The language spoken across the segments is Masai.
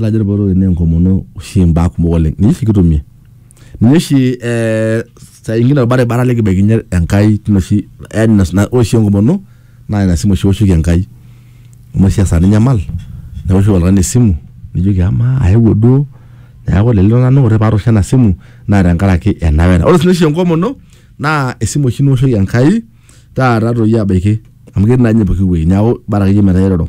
Ore dupoto oleng naa enkomono oshi mbaa kumok oleng ninye oshi kitumie ninye oshi ee saa ingine orbaribara likibaikinyie Enkai tine oshi yaani ore oshi enkomono naa ina simu oshi iwoshoki Enkai amu ore oshi esaa ninyamal niwoshoki oltung'ani esimu nijoki amaa aewuo duo neeku lelo nanu ore paatoosho ena simu naa tenkaraki ena wena. Ore sii oshi enkomono naa esimu oshi niwoshoki Enkai taata toi abaiki amu ketii naa ninye pooki wuei neeku bora akeyie metaa iroro.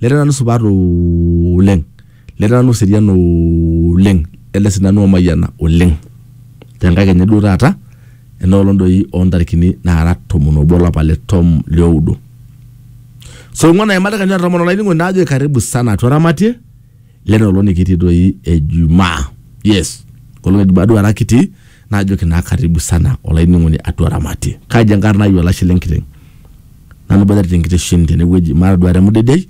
Leta nanu supat oleng. Leta nanu serian oleng. Leta si nanu omayiana oleng. Tenkae kenya duo taata, enoolong doi ontarikini nara tomon obo olapa le tom lioudo. So ong'uan aimada kenya tomon olainining'oni najoki karibu sana atua Ramatie. lena olong nikitii doi ejumaa yes olong ejumaa duo ara kitii naajoki naa karibu sana olainining'oni atua ramatie kaji enkarna ai olashe lenkiteng nanu boitare tenkitesheni tenewueji mataduare emudedei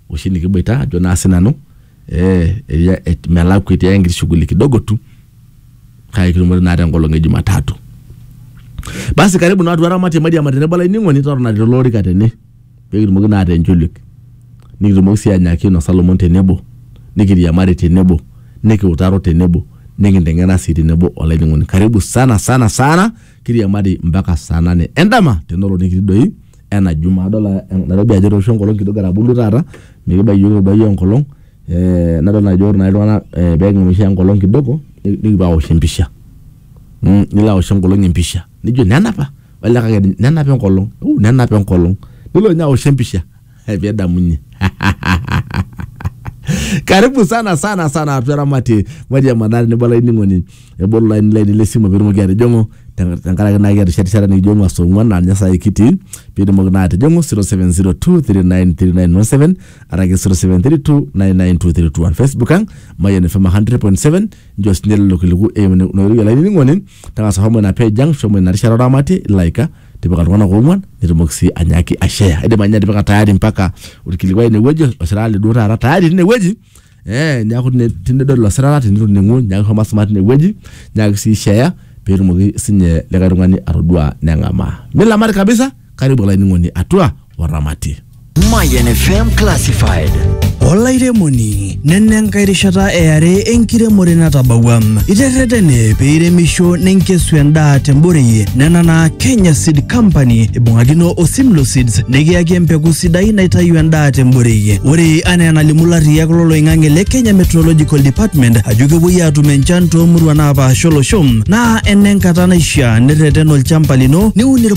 oshi nikiboita ajo naa sinanu eh, eria- et- melakua etii ake enkiti shughuli kidogo tu kake kitumore naa tenkolong e jumatatu basi karibu naa atua ramatie mairiama tenebo olainining'oni totona tele orika tene peekitumoki naa ataa encholiek nikitumoki sii anyaaki ainosa lomon tenebo, nikiriamari tenebo, nikiutaro tenebo, nikinteng'ena sii tenebo olainining'oni. Karibu sana sana sana kiriamari mpaka saa nane endama tenelo nikitii doi ena jumaa. Adol Nairobi ajo etooshuo enkolong kidogo etaboluo taata mikibaiki iyiok etoduaiye enkolong eeh nadol ajo ore naa iltung'ana peeking'amisha enkolong kidogo nikipuo aosh empisha mmh nilo aosh enkolong empisha nijo nena apa. Olikae kake nenap enkolong, oh, nenap enkolong. Nelo ninye aosh empisha pedamunye. Karibu sana sana sana atua Ramati Maji ya Manare nebo olainining'oni ebolo laini laini le simu piitumoki atijing'u ten- tenkaraki naa kiata oshi erishata nikijo ng'ua saa ong'uan naa ninye saai kitii piitumoki naa atijing'u 0702393917 araki 0732992321 Facebook ang Mayian FM 100.7 nchoo sinye lelo kiliku eimu ina oitoi olainining'oni tang'asa shomo ina page ang shomo ina rishata oramatie ilaika tipika iltung'anak oong'uan nitumoki sii anyaaki ashare aidim anya atipika tayari mpaka orkilikuai inewueji osirata liduo taata tayari tinewueji eh, niaku tine- tinidol ilo sirata tinitoning'u nyaaki shomo asuma tinewueji nyaaki sii share peetumoki sinye likae tung'ani atodua neng'amaa milamari kabisa karibu olainining'oni atua oramatie Mayan FM Classified. olairemoni nena enkae rishata eare enkiremore natabawua iterretene peiremisho nenkesu endaa temborei nena naa kenya seed company ibung'akino o simlo seeds nikiyaki empeku sidai naitayu endaa temborei ore anaa enalimu larriyak loloing'ang'e le kenya meteorological department ajo kepuoi aatum enchan toomuruan naapaasha olosho naa enenkata naishiaa nirreten olchamba lino niun irp-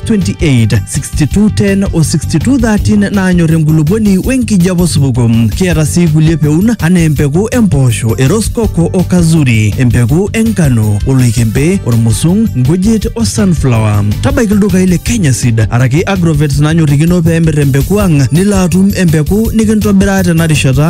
28 6210 o 6213 naanyor enkulupuoni wenkijape osupuko. Kiata sii kulie peun anaa empeku empoosho, eroskoko o kazuri, empeku enkano, oloikembe, ormusung, nkujit o sunflower. Tabaiki ildukai le Kenya Seed araki Agrovet nanyorrikino pee emir empeku ang nilo atum empeku nikintobiraa tena rishata